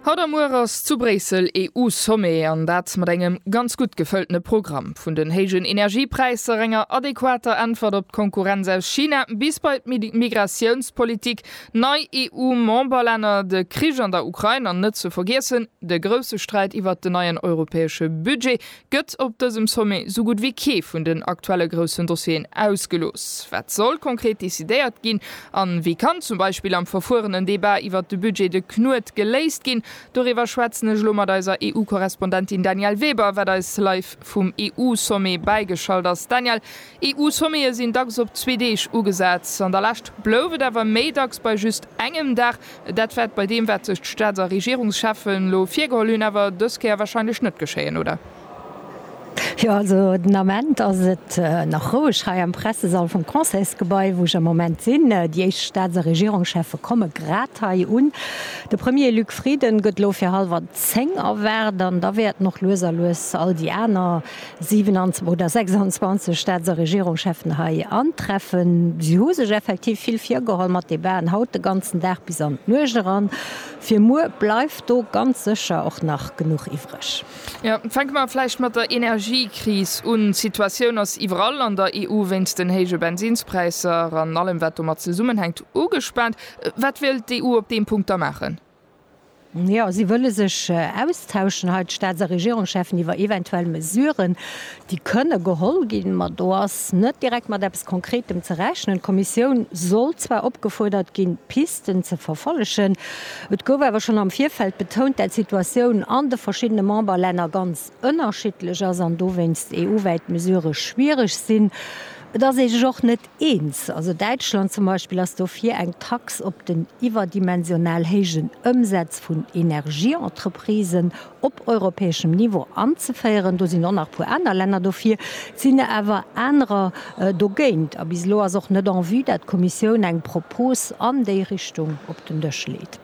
Haut a muer ass zu Bréissel EU-Sommet, an dat mat engem ganz gutt gefëltene Programm. Vun den héijen Energiepräisser, enger adequater Äntwert op d'Konkurrenz aus China bis bei d'Migratiounspolitik, nei EU-Memberlänner, de Krich an der Ukrain an net ze vergiessen de grousse Sträit iwwert den neien europäesche Budget, gëtt op dësem Sommet sou gutt wéi kee vun den aktuelle groussen Dossieren ausgelooss. Wat soll konkret decidéiert ginn? A wéi kann zum Beispill am verfuerenen Debat iwwert de Budget de Knuet geléist ginn? Doriwwer schwätzen ech elo mat eiser EU-Korrespondentin Danièle Weber, wat eis live vum EU-Sommet bäigeschalt ass. Danièle, EU-Sommete sinn dacks op zwee Deeg ugesat. An der Lescht blouf et awer méi dacks bei just engem Dag. Dat wäert bei deem, wat sech d'Staats a Regierungscheffen elo virgeholl hunn, awer dës Kéier warscheinlech net geschéien, oder? Jo, also den Ament ass et nach roueg hei am Pressesall vum Conseilsgebai, wou ech am Moment sinn. Déi éischt Staats a Regierungscheffe komme grad hei un. De Premier Luc Frieden gëtt elo fir hallwer zéng erwaart an da wäerten och lues a lues all déi aner, 27 oder 26 Staats a Regierungscheffen hei antreffen. Si hu sech effektiv vill virgeholl mat Debaten haut de ganzen Dag bis an d'Nuecht eran. Fir muer bleift do ganz sécher och nach genuch iwwreg. Jo, fänke mer vläicht mat der Energiekris un. D'Situatioun ass iwwerall an der EU wéinst den héije Bensinspräisser an allem, wat domat zesummenhänkt, ugespaant. Wat wëll d'EU op deem Punkt da maachen? Jo, si wëlle sech austauschen hei, d'Staats a Regierungscheffen, iwwer eventuell Mesuren, déi kënne geholl ginn. Ma do ass net direkt mat eppes Konkretem ze rechnen. D'Kommissioun sollt zwar opgefuerdert ginn, d'Pisten ze verfollegen. Et gouf awer schonn am Virfeld betount, dat d'Situatioun an de verschiddene Memberlänner ganz ënnerschiddlech ass an dowéinst EU-wäit Mesurë schwiereg sinn. Et ass ee sech och net Eens, also Däitschland zum Beispill ass dofir, eng Tax op den iwwerdimensional héijen Ëmsätz vun Energieentreprisen op europäeschem Niveau anzeféieren. Do sinn och nach e puer aner Länner dofir, et sinn awer anerer dogéint. A bis elo ass och net en vue, dat d'Kommissioun eng Propos an déi Richtung op den Dësch leet.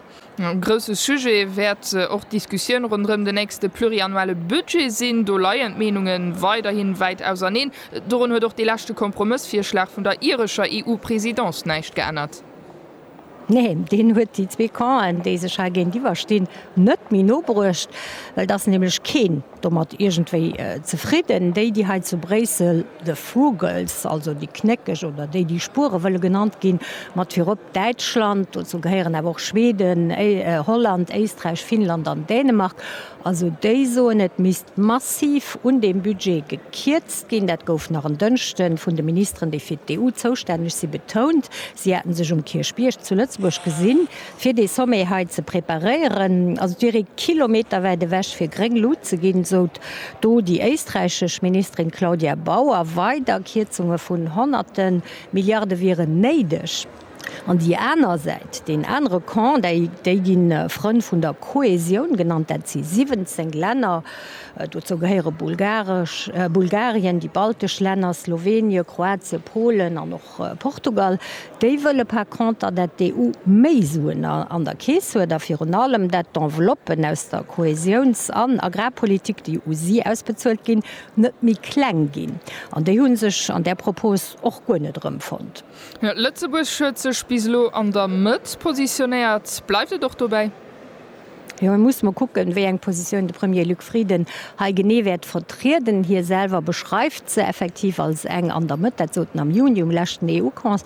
E grousse Sujet wäert och d'Diskussioun ronderëm den nächste pluriannuelle Budget sinn. Do leien d'Meenunge weiderhi wäit auserneen. Dorun huet och dee leschte Kompromëssvirschlag vun der irescher EU-Presidence näischt geännert. Neen, deen huet déi zwee Campen, déi sech hei géintiwwer stinn, net méi no bruecht, well et ass nämlech keen domat iergendwéi zefridden, déi, déi hei zu Bréissel de Vogels, also déi Knéckeg, oder déi, déi Spuere wëlle genannt ginn, mat virop Däitschland, dozou gehéieren awer och Schweden, Holland, Éisträich, Finnland an Dänemark, also déi soen, et misst massiv un deem Budget gekierzt ginn. Dat gouf nach en Dënschde vun de Ministeren, déi fir d'EU zoustänneg si, betount. Si hätten sech um Kierchbierg zu Lëtzebuerg gesinn. Fir dee Sommet hei ze preparéieren, ass et wier ee kilometerwäit ewech fir gréng Lut ze ginn, sot do déi éisträichesch Ministerin Claudia Bauer. Weider Kierzunge vun honnerte Milliarde wieren néideg. An déi aner Säit, deen anere Camp, déi gi Frënn vun der Kohäsioun genannt, dat si 17 Länner, dozou gehéiere Bulgarien, déi baltesch Länner, Slowenien, Kroatien, Polen an och Portugal, déi wëlle par conter, dat d'EU méi Suen an der Keess huet a virun allem, dat d'Enveloppen aus der Kohäsiouns an Agrarpolitik, déi u si ausbezuelt ginn, net méi kleng ginn. An déi hu sech an där Propos och guer net erëmfonnt. Lëtzebuerg huet sech bis elo an der Mëtt positionéiert. Bleift et och dobäi? Jo, et muss mer kucken, wéi eng Positioun de Premier Luc Frieden hei genee wäert vertrieden. Hie selwer beschreift se effektiv als eng an der Mëtt. Dat sot en am Juni um leschten EU-Cons,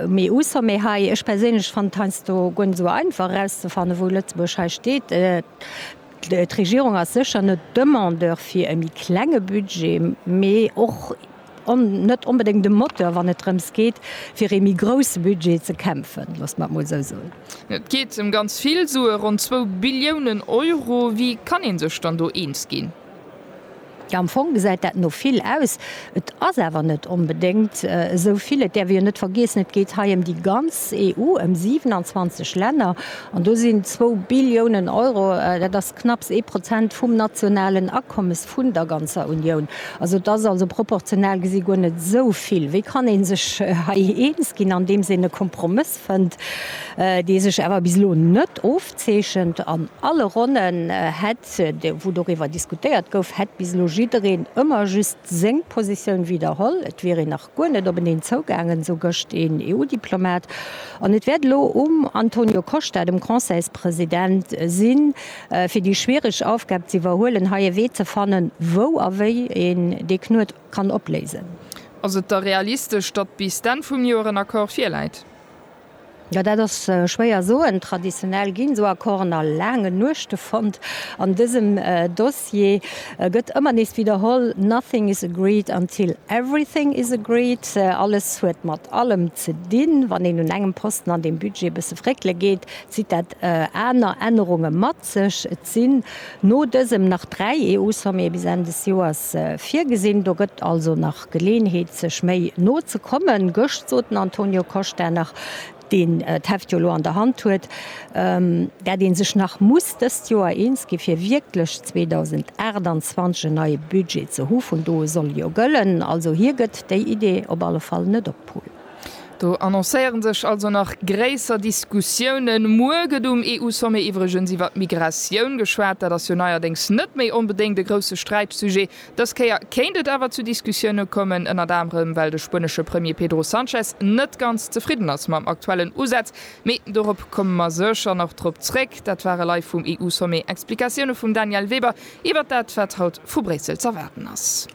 um EU-Sommet hei. Ech perséinlech fannen et heiansdo guer net esou einfach erauszefannen, wou Lëtzebuerg hei steet. D'Regierung ass sécher net Demandeur fir e méi klenge Budget, mee och. net onbedéngt e Moteur, wann et drëms geet, fir ee méi grousse Budget ze kämpfen, loosst mer et mol esou soen. Et geet ëm ganz vill Sue, ronn zwou Billiounen Euro. Wéi kann ee sech dann do eens ginn? Jo, am Fong gesäit dat no vill aus. Et ass awer net onbedéngt esou vill. Et däerf ee jo net vergiessen, et geet hei ëm déi ganz EU, ëm 27 Länner. An do sinn zwou Billiounen Euro, dat ass Knapps ee Prozent vum nationalen Akommes vun der ganzer Unioun. Also et ass also proportional gesi guer net esou vill. Wéi kann ee sech hei eens ginn, andeems een e Kompromëss fënnt, dee sech awer bis elo net ofzeechent? An alle Ronnen hätt, wou doriwwer diskutéiert gouf, hätt bis elo jiddereen ëmmer just seng Positioun widderholl. Et wier een. Guer net op en een zougaangen, esou gëscht een EU-Diplomat. An et wäert elo um Antonio Costa, dem Conseilspresident, sinn, fir déi schwiereg Aufgab z'iwwerhuelen, hei e Wee ze fannen, wou a wéi een dee Knuet kann opléisen. Ass et da realistesch, datt bis d'Enn vum Joer en Accord virläit? Jo, dat ass schwéier soen. Traditionell ginn esou Accorden a laangen Nuechte fonnt. An dësem Dossier gëtt ëmmer nees widderholl, Nothing is agreed until everything is agreed. Alles huet mat allem ze dinn. Wann een un engem Posten an deem Budget e bësse fréckele geet, zitt dat aner Ännerunge mat sech. Et sinn no dësem nach dräi EU-Sommete bis Enn des Joers virgesinn. Do gëtt also nach Geleeënheet sech méi no ze kommen. Gëscht sot den Antonio Costa nach, deen d'Heft jo elo an der Hand huet, dat ee sech nach muss dëst Joer eens gi fir wierklech 2028 en neie Budget ze hu vun do u soll e jo gëllen. Also hie gëtt déi Idee op alle Fall net op d'Pull. Do annoncéiere sech also nach gréisser Diskussiounen. Muer gëtt um EU-Sommet iwwregens iwwer d'Migratioun geschwat. Dat ass jo neierdéngs net méi onbedéngt e grousse Sträitsujet. Dës Kéier kéint et awer zu Diskussioune kommen, ënnert anerem well de spuenesche Premier Pedro Sanchez net ganz zefridden ass mam aktuellen Usaz. Mee dorop komme mer sécher nach drop zréck. Dat ware live vum EU-Sommet Explikatioune vum Danièle Weber iwwert dat, wat haut vu Bréissel z'erwaarden ass.